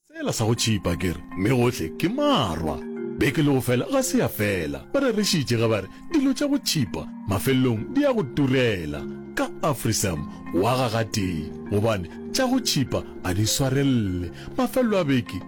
Sela sa go tšhipa ke re, mme gohle ke marwa. Beke le go fela ga se ya fela, ba rerišitše ge ba re dilo tša go tšhipa mafelelong di ya go turela. Ka Afrisam wa ga gatee gobane tša go tšhipa a di swarelele. Mafelelo a beke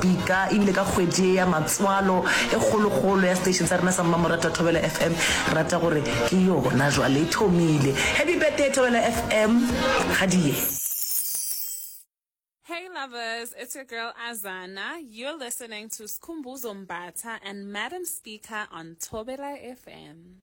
Dika, e bile ka kgwedi ye ya matswalo e kgolokgolo ya station sa rena sa Mmamoratwa Thobela FM, rata gore ke yona jwale e thomile. Happy birthday Thobela FM, ga di ye. Hey lovers, it's your girl Azana. You're listening to Skhumbuzo Mbatha and Madam Speaker on Thobela FM.